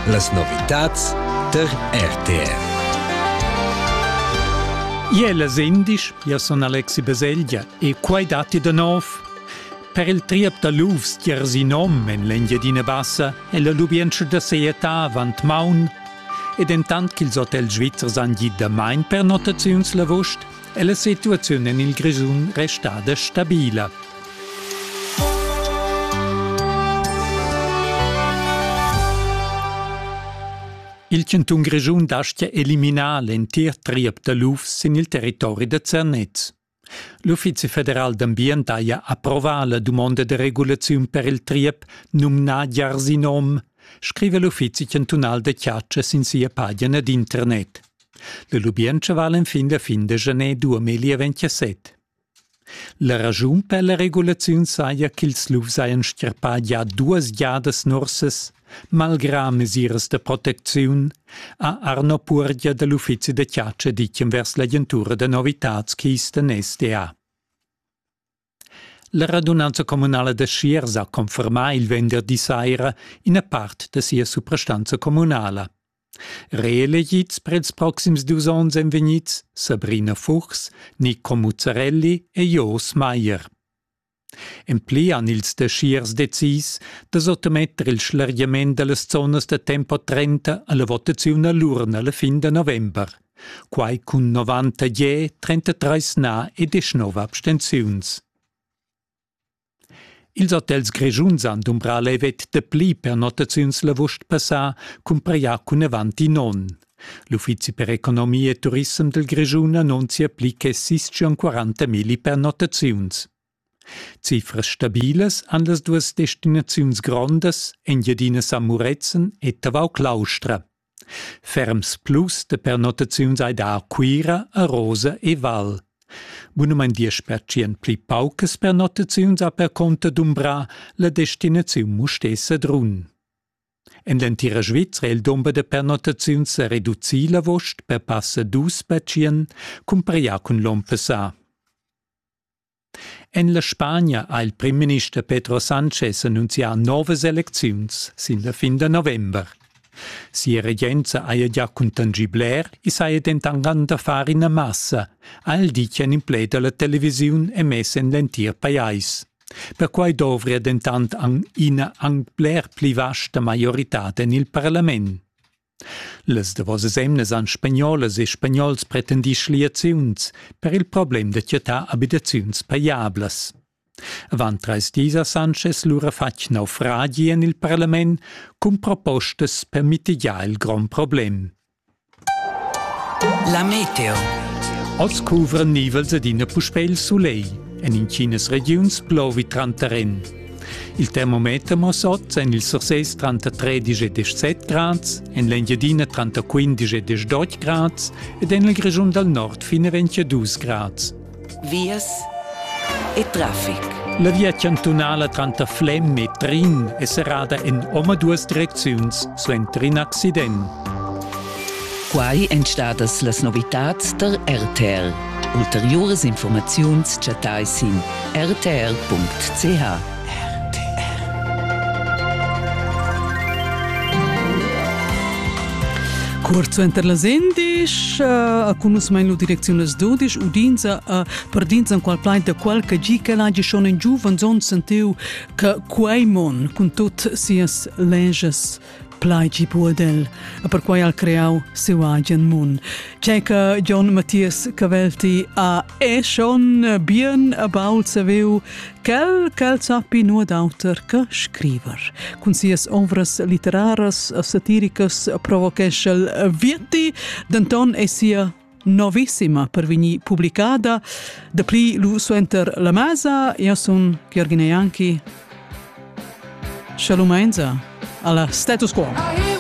Las novitads tar RTR. Iel es indisch, io sun Alexi Baselgia e quai datti da nov. Per il triep da lufs tiers in om en l'Engiadina Bassa è la lubientscha da sejetà avant maun ed entant ch'ils hotels svizzers han gì damain pernottaziuns l'avust, e la situaziun en il Grischun restada stabila. Il cantun Grischun dastia eliminar l'entir triep da luf sin il territori da Zernez. L'Uffizi federal d'ambient haja approvà la dumonda da regulaziun per il triep numnà Jarsinom, scrive l'Uffizi chantunal da chatscha sin sia pagina d'internet. La lubientscha vala enfin la fin da janer 2027. La raschun per la regulaziun saja ch'ils lufs hajan stirpà gia duas giadas nursas. Malgrà mesiras da protecziun ha Arno Puorgia da l'uffizi da chatscha ditg envers l'agentura da novitads Kisten SDA. La radunanza communala da Schiers ha confermà il venderdi saira ina part da sia suprastanza communala. Reelegids per ils proxims dus onns èn vegnids Sabrina Fuchs, Nico Muzzarelli e Jos Maier. En pli han ils da Schiers decis da sottometter il schlargiament da las zonas da tempo 30 alla votaziun a l'urna la fin da november. quai cun 90 33 na e 19 abstenziuns. Ils hotels grischuns han dumbrà levet de pli per notaziuns l'avust passà cumpraià cun avanti non. L'uffizi per economia e turissem del Grischun annunzia pli che 640.000 per notaziuns. Cifras stabilas han las duas destinaziuns grondas Engiadina San Murezzan e Tavau Claustra. Ferms plus de pernottaziuns ei dar Cuira, Arosa e Val. Bunumein diesch pertschien pli paucas pernottaziuns ha perconter dumbra la destinaziun Mustesa Drun. En l'entira Svizzera è il dumber da pernottaziuns sa reducì la vost per passa dus pertschien, cumparià cun l'onn passà. En la Spagna ha il primminister Pedro Sanchez annunzià novas elecziuns sin la fin da november. Sia regenza haja già cuntangì bler, i saja dentant da far ina massa, ha el ditg en in pled alla televisiun emess en l'entir pajais. Perquai dovria dentant ina anc bler pli vasta maioritad en il parlament. Las davosas emnas han spagnolas e spagnols pretendì schliaziuns per il problem da chattar abitaziuns pajablas. Avant trais dis ha Sanchez lura fatg naufragi en il parlament cun propostas per mitigiar il grond problem. La meteo. Oz cuvran nivels adina puspè il sulegl. En intginas regiuns plovi tranter en. Il termometer muossa oz en il Sursés tranter 13 e 17 grads, en l'Engiadina tranter 15 e 18 grads ed en il Grischun dal Nord fin a 22 grads. Vias e traffic. La via chantunala tranter Flem e Trin è serrada en omaduas direcziuns suenter in accident. Quai èn stadas las novitads tar RTR. Ulteriuras informaziuns chattai sin rtr.ch. Curt suenter las endisch a cunusmain lu direcziun las dudisch udinza a perdinzan qual plaid da qual che gi che lagi schon in giuven zon sentiu che quei mon cun tut sias lenges Plaigi Buodel, e perquai ha creau siu agen mun. Tschenca John Matthias Cavelti a e schon bien about saviu quel ch'el sappi nuot auter che scriver. Cun sias ovras literaras e satiricas provochesch'el Vietti, denton è sia novissima per vegnir publicada. Dapli lu suenter la mesa, io sun Gheorghina Janki. Shalom Alla status quo! Ah,